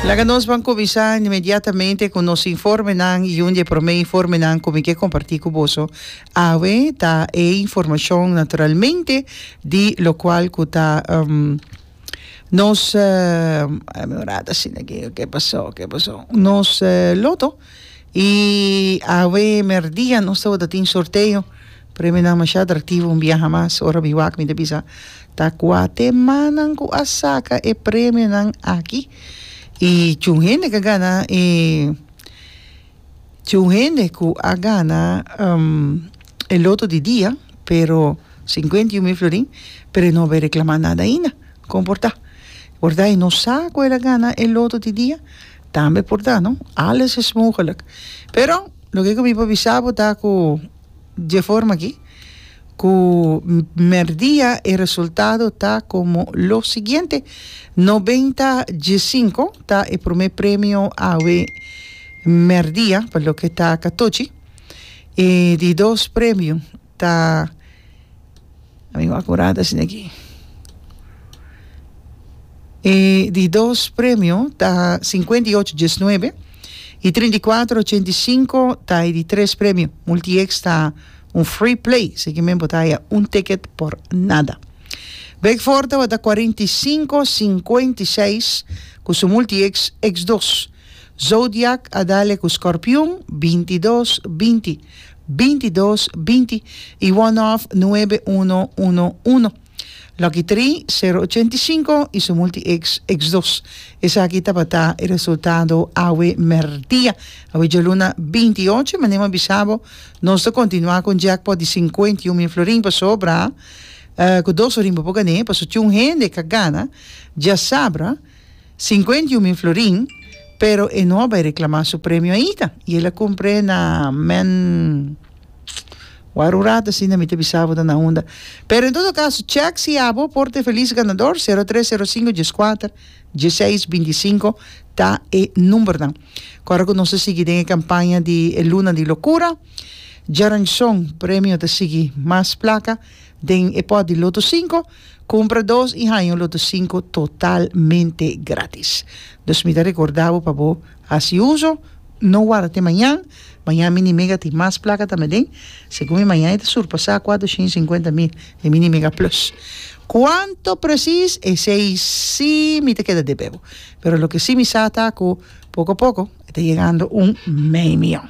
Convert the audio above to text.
Laga nos ban kuminsá inmediatamente ku nos informenan i un di e promé informenan ku mi ke kompartí ku boso awe ta e informashon naturalmente di lokual ku ta nos déjame orar asina ke ke pasó ke pasó nos loto i awe merdia nos tabata tin sorteo. Premionan masha atractivo un biaha mas ora mi wak mi ta bisa ta cua temanan cu a saca e premionan aki y chun hende ca gana y chun hende cu a gana e loto di dia pero cincuenta y un mil florin pero e no bay reclama nada ainda con por ta borda y no sa cu el a gana e loto di dia tambe por ta no alles is mogelijk pero loke cu mi pa bisa bo ta cu Dje forma aki cu merdia e resultado ta como lo siguiente, noventa dje cinco ta e prome premio awe merdia pa loke ta catochi, e di dos premio ta. Ami wak kurada asina aki e di dos premio ta sinkuenta i ocho diesnuebe i trinta i kuater ochenta i sinku ta e di tres premio multieks ta un free play esaki men bo ta haya un ticket por nada Beckford tabata cuarenta i cinco cincuenta y seis ku su multieks x dos Zodiac a dale ku Scorpion binti dos binti bintidos-binti i one-off nuebe-uno uno-uno. Lucky Tri, sero ochenta i sinku i su multi-X, X dos. Esaki tabata e resultado awe mèrdia. Awe djaluna binti i ocho, manera mi a bisa bo, nos ta kontinuá ku un jackpot di sinkuenta i un mil florin pasobra ku dos orin bo por gané, pasobra tjun hende ka gana djasabra. Sinkuenta i un mil florin, pero e no a bai reklamá su premio aita, i el a kumpré na men waru rat asina mi ta bisa bo ta na unda. Pero en todo kaso, chèk si abo por ta e felis ganador, sero tres sero sinku dies kuater dies seis binti i sinku ta e numbernan. Ku ora ku nos ta sigui den e kampaña di e luna di lokura, djaranchon premio ta sigui mas plaka den e pòt di loto sinku, Cumpra dos y haña un loto cinco totalmente gratis. Dus mi ta recorda bo pa bo haci uzo, no warda te mañan, mañan mi ni mega tin mas placa ta meden, segun mi mañan e ta surpasa cuatro shin y cincuenta mil, e mi ni mega plus. Cuanto precies esey si mi ta keda debe bo, pero loke si mi sa ta cu poco poco e ta yegando un mei miyon.